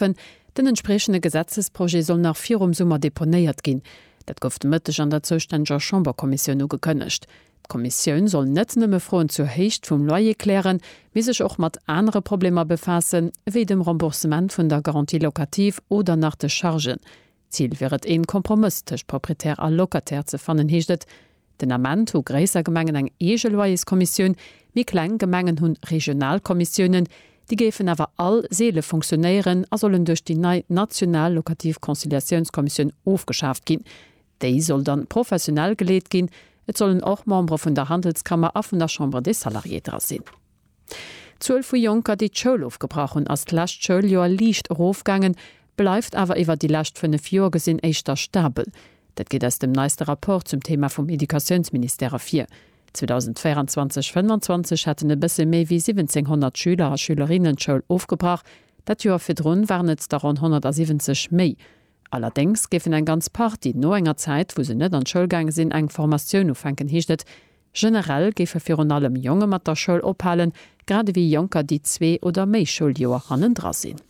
Antwerpen. Den entspriechende Gesetzesprojet soll nach virum Summer deponéiert ginn. Dat gouf de Mëtteg an der zoustänneger Chamberkommissioun ugekënnegt. D'Kommissioun soll net nëmme Froen zur Héicht vum Loyer klären, mee sech och mat anere Problemer befaassen, ewéi dem Remboursement vun der Garantie locative oder nach de Chargen, Zil wier et een Kompromëss tëscht Proprietär a Locataire ze fannen, heescht et. Den Ament hu gréisser Gemengen eng eege Loyerskommissioun, méi kleng Gemengen hunn regional Kommissiounen. Déi géifen awer all seele funktionéieren a sollen duerch déi nei national locative Conciliatiounskommissioun ofgeschaaft ginn. Déi soll dann professionell geleet ginn. Et sollen och Membere vun der Handelskammer a vun der Chambre des Salariés dra sinn. D'Zuel vu Jonker, déi d'Schoul ofgebrach hunn, ass d'lescht Schouljoer liicht erofgaangen, bleift awer iwwer déi lescht fënnef Joer gesinn éischter stabel. Dat geet aus dem neiste Rapport zum Thema vum Educatiounsministère ervir. 2024, 25 hätten e bësse méi wéi 1.700 Schüler a Schülerinnen d'Schoul ofgebrach, dat Joer virdrun waren et der ronn 170 méi. Allerdéngs géifen eng ganz Partie no enger Zäit, wou se net an d'Schoul gaange sinn, eng Formatioun ufänken, heescht et. Generell géife virun allem Jonge mat der Schoul ophalen, grad ewéi Jonker, déi zwee oder méi Schouljoer hannendra sinn.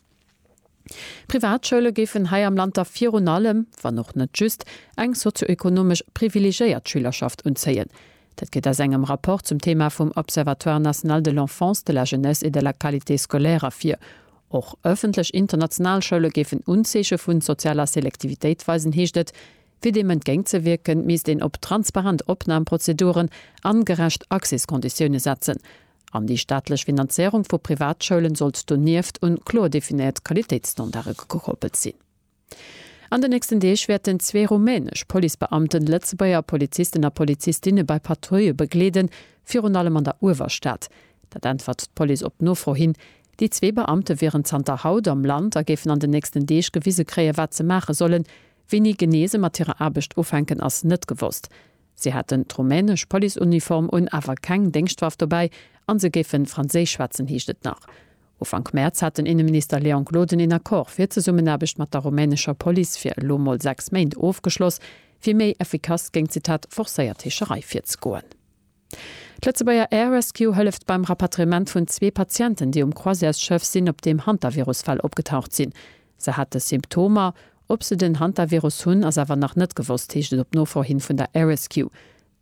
D'Privatschoule géifen hei am Land da virun allem, wann och net just, eng sozioekonomesch privilegéiert Schülerschaft unzéien. Dat gëtt aus engem Rapport zum Thema vum Observatoire national de l'enfance, de la jeunesse et de la qualité scolaire ervir. Och ëffentlech international Schoule géifen Unzeeche vu sozialer Selektivitéit weisen, heescht et. Fir deem entgéint ze wierken, misst een op transparent Opnamprozeduren an gerecht Accéskonditioune setzen. An déi staatlech Finanzéierung vu Privatschoulen sollt donieft un kloer definéiert Qualitéitsstandarde gekoppelt sinn. An den nächsten Deeg wäerten zwee rumänesch Policebeamten Lëtzebuerger Polizisten a Polizistinne bei Patrouille begleeden, virun allem an der Uewerstad. Dat äntwert d'Police op Nofro hin. Déi zwee Beamte wieren zanter haut am Land a géifen an den nächsten Deeg gewise kréien, wat se maache sollen, Wéini genee se mat hirer Aarbecht ufänken, ass net gewosst. Si haten d'rumänesch Policeuniform un, awer keng Déngschtwaff dobäi an se géifen Franséisch schwätzen, heescht et nach. Ufank Mäerz hat den Inneminister Léon Gloden een Accord fir d'Zesummenaarbecht mat der rumänescher Police fir elo mol sechs Méint ofgeschloss, fir méi effikass géint, Zitat, forcéiert Heescherei virzegoen. D'Lëtzebuerger Air Rescue hëlleft beim Rapatriement vun zwee Patienten, déi um Croisièresschëff sinn, op deem Hantavirus-Fäll opgetaucht sinn. Se hate Symptomer. Ob se den Hantavirus hunn, ass awer nach net gewosst, heescht et op Nofro hin vun der Air Rescue.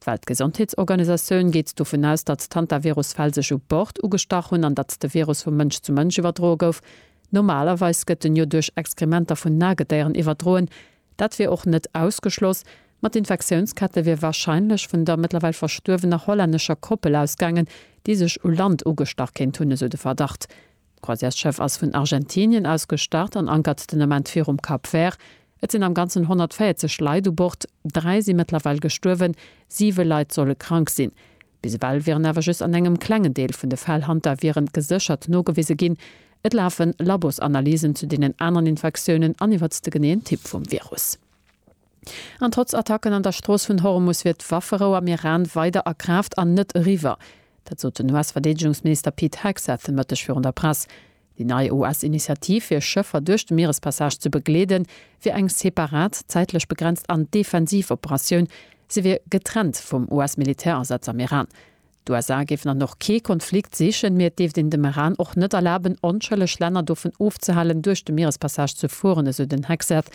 D'Weltgesondheetsorganisatioun geet dovun aus, datt d'Hantavirus-Fäll sech u Bord ugestach hunn an datt de Virus vu Mënsch zu Mënsch iwwerdroe gouf. Normalerweis gëtt en jo duerch Exkrementer vun Nagedéieren iwwerdroen, Dat wier och net ausgeschloss, ma d'Infektiounskette wier warscheinlech vun der mëttlerweil verstuerwener hollännescher Koppel ausgaangen, déi sech u Land ugestach kéint hunn, esou de Verdacht. D'Croisièresschëff ass vun Argentinien aus gestart an ankert den Ament virum Cap Vert. Et sinn am Ganzen 140 Leit u Bord, dräi si mëttlerweil gestuerwen, siwe Leit solle krank sinn. Bis ewell wieren awer just an engem klengen Deel vun de Fäll Hantaviren geséchert nogewise ginn. Et lafe Labosanalysen zu deenen aneren Infektiounen an iwwert de geneeën Typ vum Virus. An trotz Attacken an der Strooss vun Hormus wier d'Wafferou am Iran weider a Kraaft an net eriwwer. Dat sot den US-Verdeedegungsminister Pete Hegseth e Mëtteg virun der Press. Déi nei US-Initiativ, fir Schëffer duerch de Mierespassage ze begleeden, wier eng separat, zäitlech begrenzt an defensiv Operatioun. Se wier getrennt vum US-Militärasaz am Iran. D'USA géifen an och kee Konflikt sichen, mee et dierft een dem Iran och net erlaben, onschëlleg Länner dovun ofzehalen, duerch de Mierespassage ze fueren, esou den Hegseth.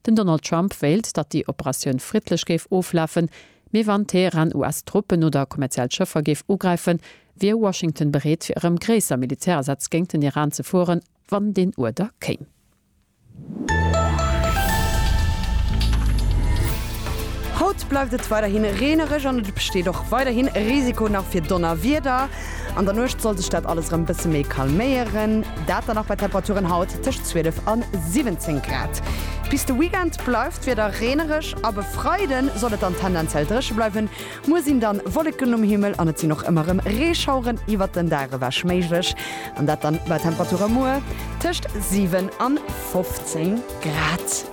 Den Donald Trump wéilt, datt déi Operatioun friddlech géif oflafen, mee wann Teheran US-Truppen oder kommerziell Schëffer géif ugräifen, wier Washington bereet fir erëm gréisser Militärasätz géint den Iran ze fueren, wann deen Uerder kéim. Haut bleift et weiderhi reenereg an et besteet och weiderhi Risiko nach fir Donnerwieder. An der Nuecht soll sech dat alles erëm bësse méi calméieren, dat dann och bei Temperaturen haut tëscht 12 a 17 Grad. Bis de Weekend bleift d'Wieder reenereg ab e Freide soll et dann tendenziell dréche bleiwen. Muer sinn dann Wolleken um Himmel an et sinn och ëmmer erëm Reeschaueren iwwert den Dag ewech méiglech an dat dann bei Temperature muer tëscht 7 an 15 Grad.